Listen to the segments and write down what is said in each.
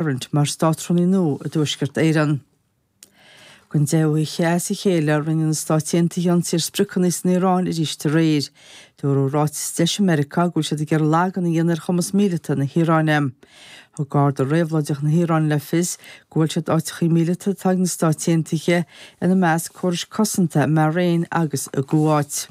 Tarrant mar Státrúnaí nua i dTuaisceart Éireann. Don deichiú hoíche as a chéile, rinne na Stáit Aontaithe ionsaí ar spriocanna san Iaráin arís aréir. Dúradh i ráiteas de chuid Mheiriceá go bhfuil siad ag iarraidh lagú a dhéanamh ar chumas míleata na hIaráine. Thug Garda Réabhlóideach na hIaráine le fios gur bhuail siad áiteachaí míleata atá ag na Stáit Aontaithe, ina measc córais cosanta i mBahrain agus i gCuáit.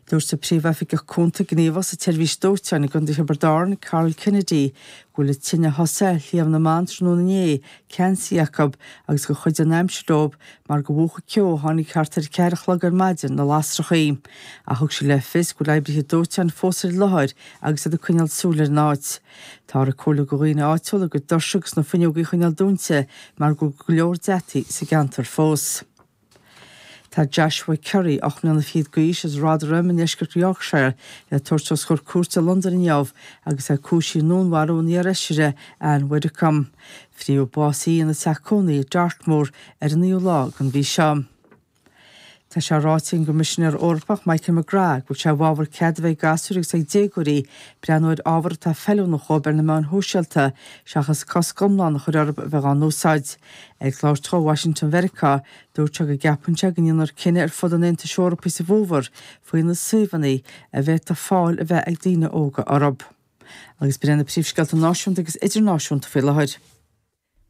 Dúirt an Príomhoifigeach Cúnta Gníomhach sa tSeirbhís Dóiteáin i gContae Thiobraid Árann, Karl Kennedy, go bhfuil an tine a thosaigh ar Shliabh na mBan tráthnóna inné, ceansaithe acu agus gur chuidigh an aimsir leo mar gur mhúch an ceo a tháinig thart ar a ceathair a chlog ar maidin na lasrachaí. Ach thug sé le fios go bhfuil oibrithe dóiteáin fós ar an láthair agus iad ag coinneáil súil ar an áit. Táthar á chomhairliú do dhaoine áitiúla a gcuid doirse agus fuinneogaí a choinneáil dúnta mar go bhfuil go leor deataí sa gceantar fós. Tá Joshua Curry, ocht mbliana fichead d'aois, as Rotherham i ndeisceart Yorkshire, le tabhairt os comhair cúirte i Londain inniu agus é cúisithe i ndúnmharú an iar-fheisire Ann Widdecombe. Fritheadh básaithe í ina teach cónaithe i Dartmoor ar an 9ú lá den mhí seo. Tá sé ráite ag an gCoimisinéir Eorpach Michael McGrath go bhfuil sé i bhfabhar cead a bheith ag gasúir agus ag déagóirí breathnú ar ábhar atá feiliúnach dhóibh ar na meáin shóisialta seachas cosc iomlán a chur orthu a bheith á n-úsáid. Ag labhairt dó i Washington Mheiriceá, dúirt sé go gceapann sé go ndéanfar cinneadh ar fud an Aontais Eorpaigh sa bhfómhar faoi na suíomhanna a bhféadfadh fáil a bheith ag daoine óga orthu. Agus b'in iad na príomhscéalta náisiúnta agus idirnáisiúnta faoi láthair,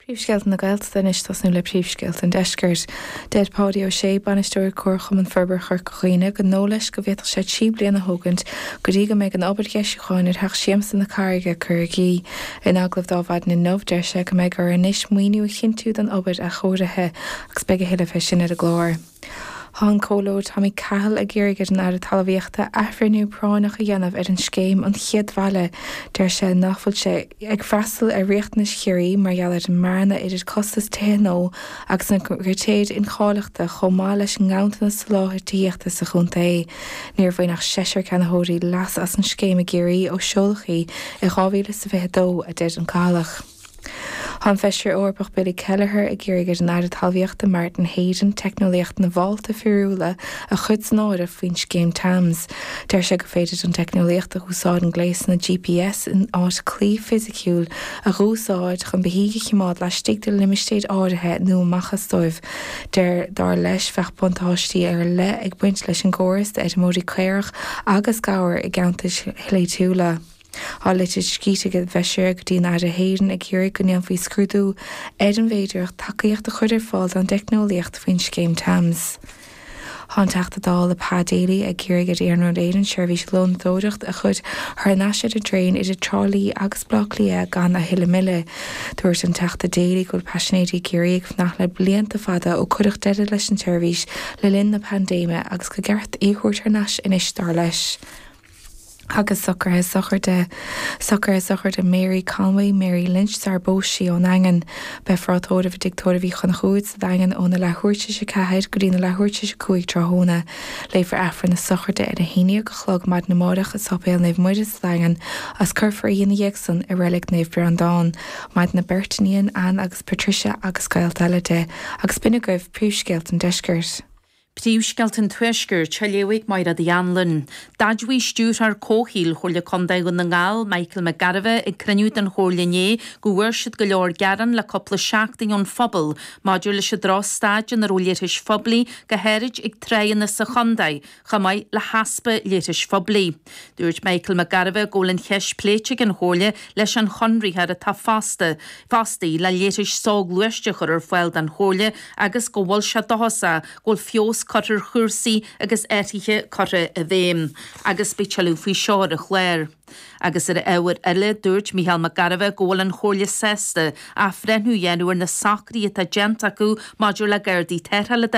Príomhscéalta na Gaeltachta Anois tosnóm le príomhscéalta an deiscirt. Deir Páidí Ó Sé, Bainisteoir Comharchumann Forbartha Chorca Dhuibhne gur dóigh leis go bhféadfadh sé trí bliana a thógaint go dtí go mbeidh an obair dheisiúcháin ar Theach Siamsa na Carraige curtha i gcrích. In agallamh ar maidin inniu, deir sé go mbeidh orthu anois maoiniú a chinntiú don obair athchóirithe agus beidh a thuilleadh fé sin ar an gclár. Tá an Comhleoir Tommy Cahill ag iarraidh ar an Aire Talmhaíochta athbhreithniú práinneach a dhéanamh ar an scéim an chéad bhaile deir sé nach bhfuil sé ag freastal ar riachtanais Chiarraí mar gheall ar an mbearna idir costas tithe nua agus na critéir incháilitheachta chomh maith leis an nganntanas soláthair tithíochta sa chontae. Níor bhain ach seisear ceannaitheoirí leas as an scéim i gCiarraí ó seoladh í i 2022, a deir an Cathailleach. Tá an Feisire Eorpach Billy Kelleher ag iarraidh ar an Aire Talmhaíochta Martin Heydon teicneolaíocht na bhfálta fíorúla a chur san áireamh faoin scéim Tams. Deir sé gur féidir an teicneolaíocht a úsáideann gléasanna GPS in áit claí fisiciúil a dh'úsáid chun beithígh a chimeád laistigh de limistéir áirithe nó amach astu. Deir, dar leis, bheadh buntáistí ar leith ag baint leis an gcóras d'fheirmeoirí caorach agus gabhar i gceantair shléibhtiúla. Tá litir scríte ag an bhFeisire go dtí an Aire Heydon ag iarraidh go ndéanfaí scrúdú ar an bhféidearthacht tacaíocht a chur ar fáil don dteicneolaíocht faoin Scéim Tams. Tá an Teachta Dála Pa Daly ag iarraidh ar Iarnród Éireann seirbhís lónadóireachta a chur thar nais ar an dtraein idir Trá Lí agus Baile Átha Cliath gan a thuilleadh moille. Dúirt an Teachta Daly go bhfuil paisinéirí ag iarraidh ag fanacht le blianta fada ó cuireadh deireadh leis an tseirbhís le linn na paindéime agus gur ceart í a thabhairt thar nais anois dar leis. agus socruithe sochraide, socruithe sochraide Mary Conway, Mary Lynch sarar phós sí ón nDaingean. Beidh tráth tórraimh i dTig Tórraimh Uí Chonchúir sa Daingean óna leathuair tar éis a ceathair go dtí na leathuair tar éis a cúig tráthnóna. Léifear Aifreann na sochraide ar a haondhéag a chlog maidin amáireach i Séipéal Naomh Muire sa Daingean is cuirfear í ina dhiaidh san i Reilig Naomh Breandán maireann a beirt iníon, Anne agus Patricia agus gaolta eile di, agus b'in agaibh príomhscéalta an deiscirt. Príomhscéalta an Tuaiscirt, a léifidh Maighréad Hanlon. D'admhaigh Stiúrthóir Comhshaoil Chomhairle Contae Dhún na nGall, Michael Mac Gairbheith, ag cruinniú den Chomhairle inné go bhfuair siad go leor gearán le cúpla seachtain ón phobal maidir leis an drochstaid ina raibh leithris phoiblí go háirid ag tráigheanna sa chontae chomh maith le heaspa leithris phoiblí. Dúirt Michael Mac Gairbheith go bhfuil an cheist pléite ag an Chomhairle leis an chonraitheoir atá fostaithe, fostaí le leithris soghluaiste a chur ar fáil don Chomhairle agus go bhfuil sé dóchasach go bhfuil feabhas curtha ar chúrsaí agus athruithe curtha i bhfeidhm. Agus beidh tuilleadh faoi seo ar an chlár. Agus ar ábhar eile, dúirt Micheál Mac Gairbheith go bhfuil an Chomhairle sásta athbhreithniú a dhéanamh ar na socruithe atá déanta acu maidir le gardaí tarrthála.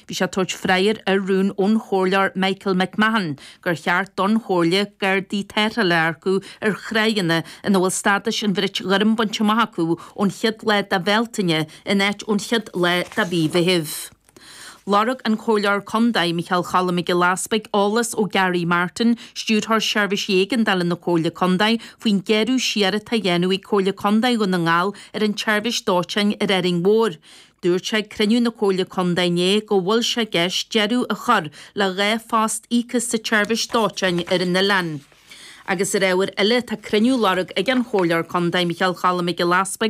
Bhí sé ag tabhairt freagar ar rún ón Chomhairleoir Michael McMahon, gur cheart don Chomhairle Gardaí tarrthála a earcú ar thráigheanna ina bhfuil stádas an bhrait ghoirm bainte amach acu ón chéad lá de Bhealtaine in áit ón chéad lá de Mhí Mheithimh. Lorg an Comhairleoir Contae, Micheál Choilm Mac Giolla Easpaig, eolas ó Gary Martin, Stiúrthóir Seirbhís Éigeandála na Comhairle Contae, faoin ghearradh siar atá á dhéanamh ag Comhairle Contae Dhún na nGall ar an tSeirbhís Dóiteáin ar Árainn Mhór, Dúirt sé ag cruinniú na Comhairle Contae inné go bhfuil sé i gceist deireadh a chur le dhá phost íoctha sa tseirbhís dóiteáin ar an oileán agus ar ábhar eile tá cruinniú á lorg ag an Chomhairleoir Contae Micheál Choilm Mac Giolla Easpaig